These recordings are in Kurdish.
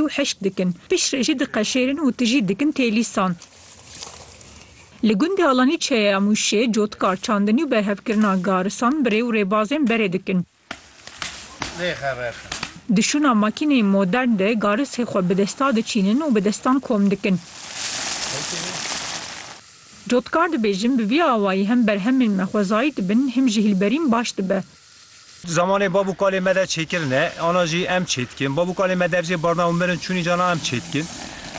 û hişk dikin. Pişt re jî diqeşêrin û tijî dikin têlîsan. Li gundê Alanî Çeyeya Mûşê, cotkar, çandinî û berhevkirina garisan bi rê û rêbazên berê dikin. Di şûna makîneyên modern de garisê xwe bi desta diçînin û bi destan kom dikin. Cotkar dibêjin bi vî awayî hem berhemên me xwezayî dibin him jî hîlberîn baş dibe. Zamanê bab û kalê me de çêkirin e, ana jî em çêdikin. Bab û kalê me dev jê barna û mirin çûnî cana em çêdikin.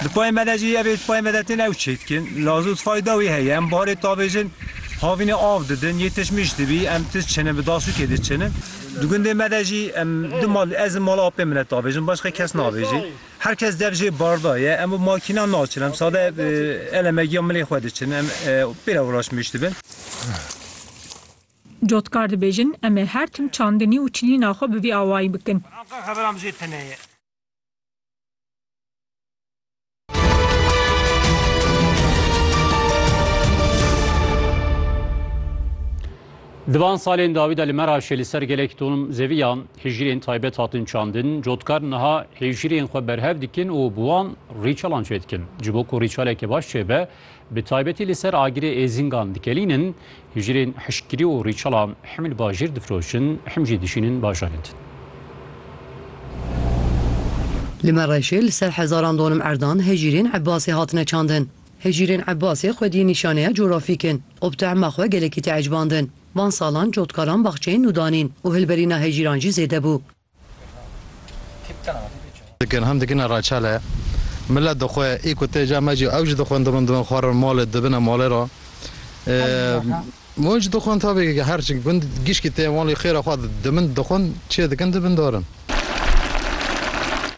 Di payê me de jî ev ê di payê me de tên ew çêdikin. Laz û tifayê dawî heye. Em barê tavêjin havînê av didin, yê tişt mij dibî em tişt çinin bi dasûkê diçinin. Di gundê me de jî em di mal ez li mala apê min de tavêjin başqa kes navêjî. Her kes dev jê barda ye. Em bi makînan naçin em sade elemegiya milê xwe diçinin. Em pê re ûraş mij dibin. Cotkar dibêjin, Em ê her tim çandinî û çilîna xwe bi vî awayî bikin. Di van salên dawî de li Meraşê li ser gelek ton zeviya hîjrên taybet hatin çandin. Cotkar niha hîjrên xwe berhev dikin û bi wan rîçalan çêdikin. Ji bo ku rîçaleke baş çêbe, Bi taybetî li ser agirê êzîngan dikelînin, hijirên hişkgirî û rîçela him li bajêr difroşin, him jî dişînin bajarên din. Li Mereşê li ser hezaran donim erdan hijirên Ebbasê hatine çandin. Hijirên Ebbasê xwedî nîşaneya corafîk in û bi tehma xwe gelekî teecbandin. Van salan cotkaran baxçeyên nû danîn û hilberîna hijîran jî zêde bû. Dikin hem dikine reçele. Milet dixwe ê ku tê ca me jî ew jî dixwin dibin dibin xwarin malê dibine malê re. Wan jî dixwin tabî ki her gund gişkî tê malê xêra xwe di dimin dixwin çêdikin dibin darin.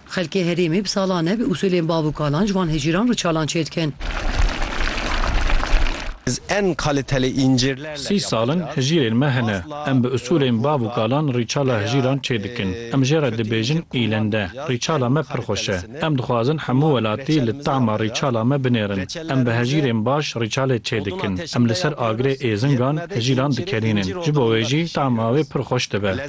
Xelkê herêmê bi salan e bi usulên bav û kalan ji van hicîran re çalan çêdikin. Sî sal in hicîrên me hene. Em bi usulên bav û kalan rîçala hicîran çêdikin. Em jê re dibêjin îlende. Rîçala me pir xweş e. Em dixwazin hemû welatî li tama rîçala me binêrin. Em bi hicîrên baş rîçalê çêdikin. Em li ser agirê êzingan hicîran dikelînin. Ji bo wê jî tama wê pir xweş dibe.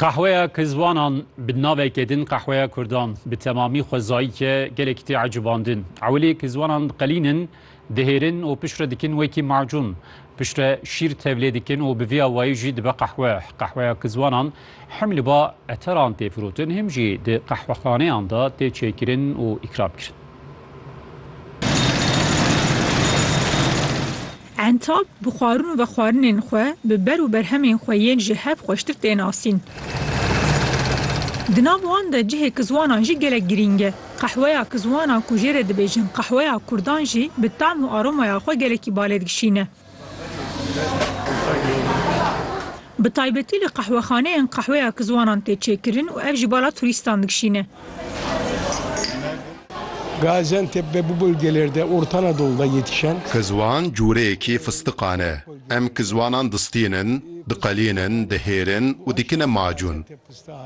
Qehweya Kizwanan bi navekê din Qehweya Kurdan bi temamî xwezayî ke gelekî tê ecibandin. Ewilê kizwanan diqelînin, dihêrin û piştre dikin wekî macûn. Piştre şîr tevlê dikin û bi vî awayî jî dibe qehwe. Qehweya Kizwanan him li ba eteran tê firotin him jî di qehwexaneyan de tê çêkirin û îkramkirin. Entap bi xwarin û vexwarinên xwe, bi ber û berhemên xwe yên ji hev xweştir tê nasîn. Di nav wan de cihê kizwanan jî gelek girîng e. Qehweya kizwanan ku jê re dibêjin qehweya kurdan jî bi tam û aromaya xwe gelekî balêdgişîn e. Bi taybetî li qehwexaneyan qehweya kizwanan tê çêkirin û ev jî bala turîstan dikişîne. Gaziantep'de bu bölgelerde Orta Anadolu'da yetişen. Kizwan cûreyekî fistiqan e. Em kizwanan distînin, diqelînin, dihêrin û dikine macûn.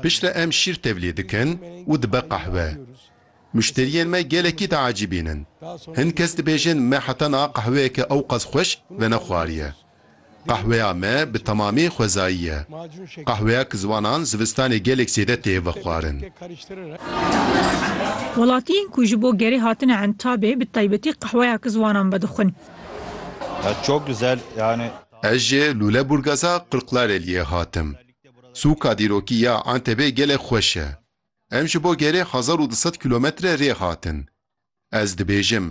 Piştre em şîr tevlî dikin û dibe qehwe. Muşteriyên me gelekî diecîbîn in. Hin kes dibêjin me heta niha qehweyeke ewqas xweş venexwariye. Qehweya me bi temamî xwezayî ye. Qehweya kizwanan zivistanê gelek zêde tê vexwarin. Welatiyên ku ji bo gerê hatine entabê bi taybetî qehweya kizwanan vedixwin. Ez ji Lûleburgaza Qirqlareliyê hatim. Sûka dîrokî ya Entebê gelek xweş e. Em ji bo gerê hezar û du sed kîlometre rê hatin. Ez dibêjim,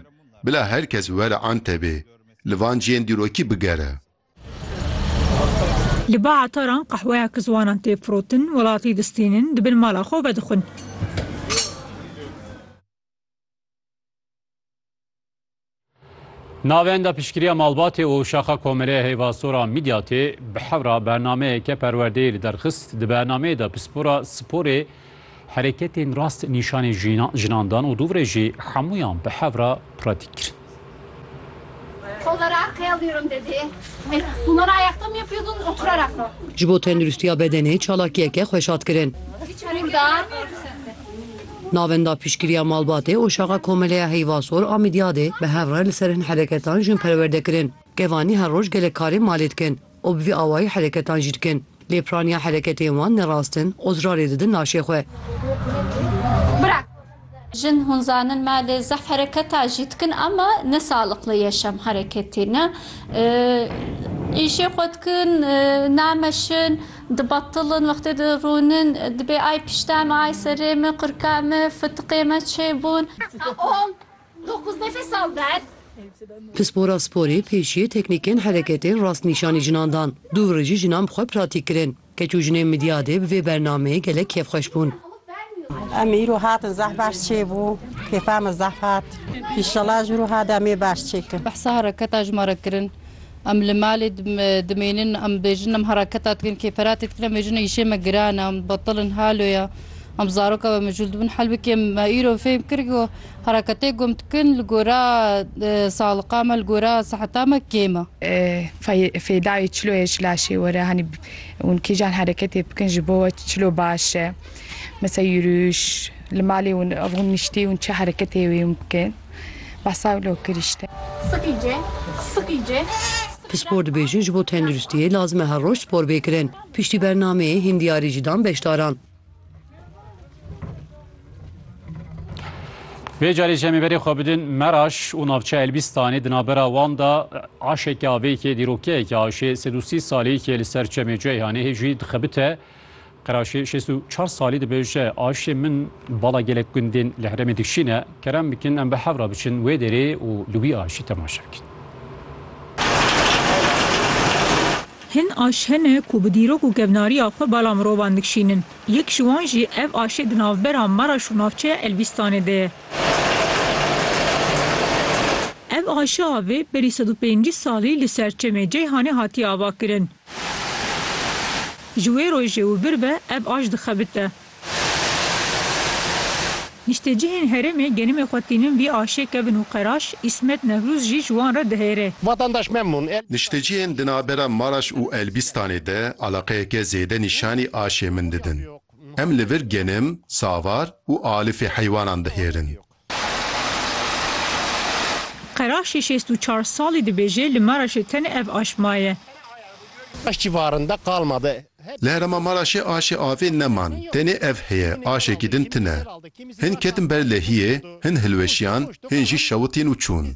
bila her kes were Antebê, li van ciyên dîrokî bigere. Li ba etaran qehweya ku ziwanan tê firotin, welatî distînin, di bin mala xwe vedixwin. Navenda piştgiriya malbatê û şaxa komelê heyva sora Midyatê bi hewra bernameyeke perwerdeyê li derxist. Di bernameyê de pispora sporê hereketên rast nîşanî jinan dan û dûvre jî hemûyan bi hewra pratîk kirin. Ji bo tenduristiya bedenê çalakiyeke xweşat kirin. Navenda piştgiriya malbatê û şaxa Komeleya Heyvasor a Mîdyadê bi hev re li ser hin hereketan jin perwerde kirin. Kevanî her roj gelek karên malê dikin û bi vî awayî hereketan jî dikin. Lê piraniya hereketên wan ne rast in, ozrarê didin laşê xwe. Jin hûn zanin me lê zehf hereketa jî dikin ama ne saliqli ye şem hereketê ne. Îşê xwe dikin, nameşin. Dibatilin, wextê dirûnin, dibê ay piştê me, ay serê me, qurka me, fitiqê me çê bûn. On, dokuz nefes al ver. Pispora sporê pêşiyê teknîkên hereketên rastnîşanî jinan dan. Du rijî jinan bi xwe pratîk kirin. Keç û jinên Midyadê bi vê bernameyê gelek kêfxweş bûn. Em îro hatin zehf baş çê bû. Kêfa me zehf hat. Înşellah ji îro hat em ê baş çê kin. Behsa hereketa ji me re kirin. Em li malê dimênin, em dibêjin em hereketa dikin, kêferatê dikin, em bêjin îşê me giran e, em betil in, halo ye, em zaroka me mijûl dibin, helbikê me îro fêm kir ku hereketê ku em dikin li gora saliqa me, li gora siheta me kêm e. Fêdayê çilo ye ji laşê were, hanî hûn kîjan hereketê bikin ji bo we çilo baş e. Misal yirûş, li malê hûn ev hûn niştî hûn çi hereketê wê hûn bikin. Pispor dibêjin ji bo tenduristiyê lazim e her roj spor bê kirin. Piştî bernameyê hîn diyarî jî dan beşdaran. Vê carê ji em ê berê xwe bidin Meraş û navçeya Elbîstanê di navbera wan de aşeke avê yekê dîrokeyeke aşê sed û sî salî yekê li ser çemê Ceyhanê hê jî dixebite Qeraşê şêst û çar salî dibêje, Aşê min bala gelek gundên li herêmê dikşîne. Kerem bikin em bi hev re biçin wê derê û li wî aşê temaşe bikin. Hin aş hene ku bi dîrok û kevnariya xwe bala mirovan dikşînin. Yek ji wan jî ev aşê di navbera Maraş û navçeya Elbîstanê de ye. Ev aşe avê berî sed û pêncî salî li Serçemê, Ceyhanê hatiye avakirin. Ji wê rojê û bir ve ev aj dixebite. Niştecihên herêmê genimê xwe tînin vî aşê kevin û qeraş Îsmet Newrûz jî ji wan re dihêrê. Vatandaş memnun. Niştecihên di navbera Maraş û Elbîstanê de eleqeyeke zêde nîşanî aşê min didin. Em li vir genim, savar û alifê heywanan dihêrin. Qeraşê şêst û çar salî dibêje li Maraşê tenê ev aş maye. Aş civarında kalmadı. Li herêma Maraşê aşê avê neman, tenê ev heye, aşekî din tine. Hin ketin ber lehiyê, hin hilweşiyan, hin jî şewitîn û çûn.